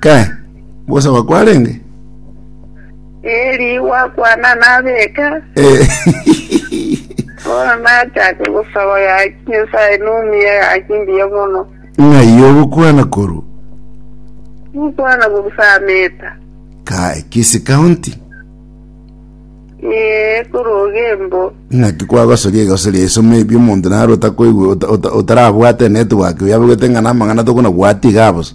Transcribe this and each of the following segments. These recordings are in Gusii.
Ke, gosaba kwarenge? Eri gwakwana nabeka. Eh, Bono nachake gosaba gaki Nyasae numia gaki mbuya mono. ng'ai ogokwana korwa? Mukwana gogusameta. Kae, Kisii County. Ee, koroga embo. ng'aki kwagosoria egoso ria isomo ebi omonto naro otakoigwe ota- ota- otarabwate network oyabegwete ng'a namang'ana tokonabwati iga bosa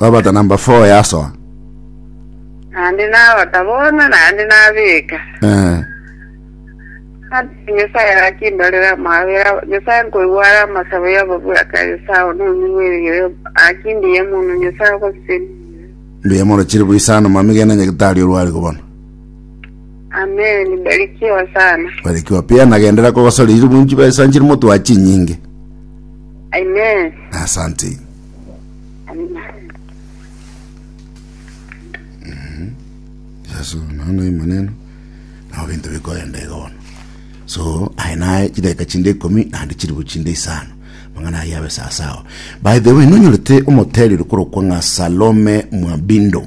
Babata namba 4 yasoa. Naende nabata bono, naende nabeka. Eh. Ase Nyasae gaki mbarera amabera, Nyasae nkoigwa are amasabo y'ababura kare Esau nonyigwerigere, gaki mbuya mono Nyasae ogosesenia. Mbuya mono chiri buisano mami gena nyagitari orware kobona. Amen, barikiwa sana. Barikiwa pia nagendera kogosora iri bunchi besa nchiri motwa chinyinge. Amen. Asante. Yeso nono emaneno nabo binto bikoenda iga bono so aye naye chidakika chinde ikomi naende chiribu chinde isano mang'ana aye abe sasawa by the way nonyorete omoteri ore korokwa ng'a salome mwabindo